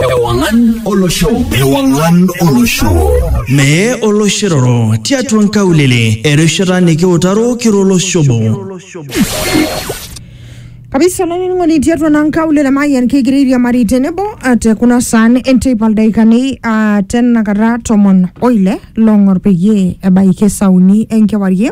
Ewangan Olosho. Ewangan Olosho. Mee oloshiroro tiatua nkaulele erishata nikiutaro kiro olosho obo. kabisa olainining'oni tiatua naa nkaulele mayian kigira airiamari tenebo ah, te kuna saan enteipa ildaikani ah, tenakata tomon oile long'or peyie ebaiki esauni enkewarie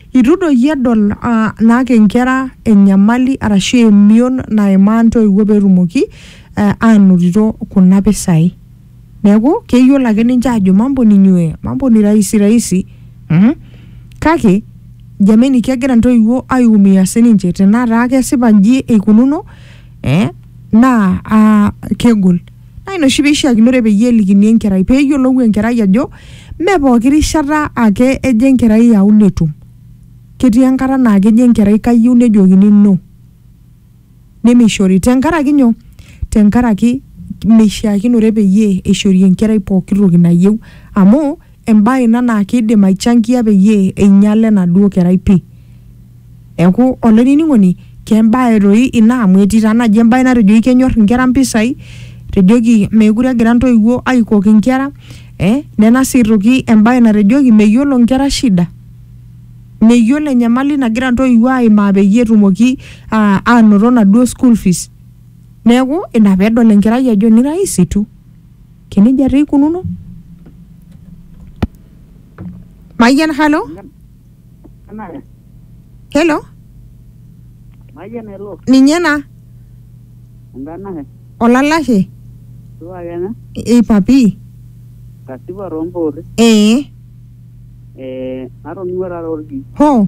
Eitu doi iyie edol naake inkera enyamali arashu emion naimaa intoiwuo peetumoki aanotito kuna pisai. Neaku, keyiolo ake ninche aajo mambo ni nywee, mambo ni rahisi rahisi. Kake, jameni kegira intoiwuo aiumia sininche tenaa taa kesipa inji eikununo ee naa kegol. Naa ina oshi peishiakinore peyie elikini enkerai pee eyiolou enkerai ajo mee pooki rishata ake ejo enkerai aau netum. Ketii enkata naa kejo enkerai kayieu nejokini no. Nemeishori. Tenkaraki nyoo? Tenkaraki meishiakinore peyie eishori enkerai pooki toki nayieu amu embae ina naa kidim aichangia peyie einyala enaduo kerai pi. Neaku olaininingoni kembae doi ina amu etii taa naji embae natejoki kenyor inkera mpisai etejoki mekure egira ntoiwuo aikok inkera ee nena sii aitoki embae natejoki meyiolo inkera shida meyiolo enyamali nagira ntoiwuo aimaa peyie etumoki aa anoto naduo school fees neaku ina pedol enkerai ajo ni rahisi tu. Kenejia taa ikununo. Mayian halo. Kenare. Hello. Mayian elo. Ninye na. Enkanashe. Olalashe. Supa kenya. Ei papi. Kasipa too mpoorri. Ee. Eh, natoning'o taata orkiu. Hoo.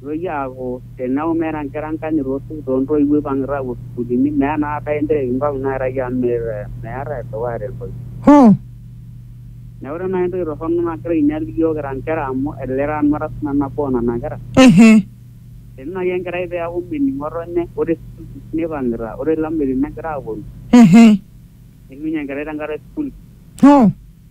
Nitoki aaku tenaa meeta inkera enkanyit osupuko too ntoiwuo ipang'ita aapuo sukuulini meeta naa kata intayu inkung nairragi amu meeta edukuya te ntoki. Hoo! Neeku ore naai entoki torrono nagira ainyal iyiook kira inkera amu elelek taa nanu ara sii nanu nabo oo nena kera. Ehe. Tenaa naai enkerai peeku mening ng'otonye ore sukuul fees nipang'ita ore ilameitin negira aaponu. Ehe. Neishunye enkerai tenkata e sukuul fees. Hoo!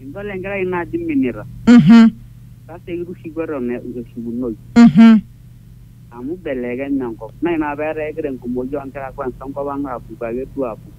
Idol enkerai ino ajo iminita. Mhm. Sasa eitu ishuku eton eitu eshukunoyu. Mhm. Amu eibelekenye enkop. Naa ina apa pee etaa kegira enkumoi oo nkera kwansa enkop ang aapuku ake duo aapuku.